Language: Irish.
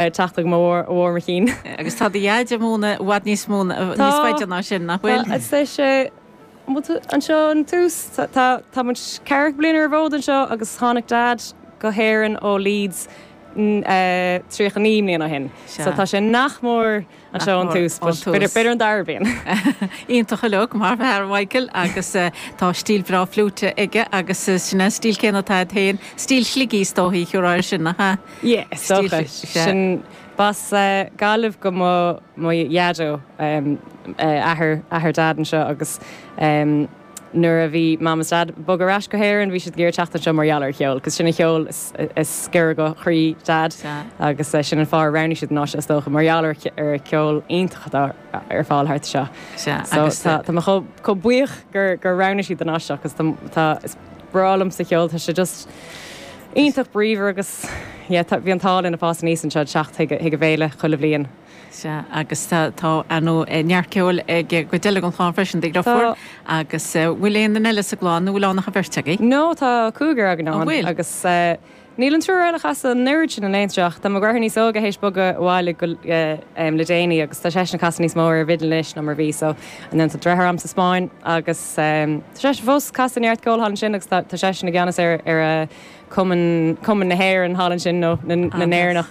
Ar teachta mo mhór mo chinn. Agus tá do Dhaid ag múineadh i bhfad níos mó, níos faide ná sin, nach bhfuil? Tá, arsa sé. Bhuel, tá, anseo ón tús. Tá, tá, tá muid ceathrachú bliain ar an bhfód anseo agus tháinig Dad go hÉirinn ó Leeds, eh, tríocha naoi mbliana ó shin. Sea. So tá sé nach mór. Anseo ón tús, b'fhéidir an dara bliain. Iontach ar fliúit, mar ab fhearr Michael agus tá stíl bhreá fliúite aige agus sin an stíl chéanna atá agat féin, stíl Shligigh is dóichí a thabharfá air sin, nach ea. Yeah, is dócha. Sin b'as Gaillimh do mo dhaideo, athair Dad anseo agus. nuair a bhí Mam is Dad ag bogadh ar ais go hÉirinn, bhí siad ag iarraidh teacht anseo mar gheall ar an cheol, cos sin an ceol is giorra do chroí Dad agus sin an fáth ar roghnaigh siad an áit seo is dócha, mar gheall ar an cheol iontach atá ar fáil thart anseo. So tá tá mé chomh chomh buíoch gur gur roghnaigh siad an áit seo cos tá tá, is breá liomsa an ceol, tá sé just iontach bríomhar agus yeah tá bhí an t-ádh linn ag fás aníos anseo ag teacht chuig chuig an bhféile chuile bhliain. Sea, agus tá, tá, ar ndú, neart ceoil ag an gcuid eile den chlann freisin, do Tá. dheartháir, agus eh, bhfuil aon duine eile sa gclann nó níl ann ach an bheirt agaibh? No, tá cúigear againn An bhfuil? ann agus eh, níl an triúr eile ag casadh an oiread sin anocht ach tá mo dheartháir níos óige th'éis bogadh abhaile go, eh, em, le déanaí agus tá seisean ag casadh níos mó ar an bhfidil anois ná mar a bhí so ansin tá deartháir agam sa Spáinn agus em, tá seisean fós casadh neart ceoil thall ansin agus tá, tá seisean i gceannas ar, ar eh, cumann, cumann na hÉireann thall ansin nó na, na Ah, nice. nÉireannach.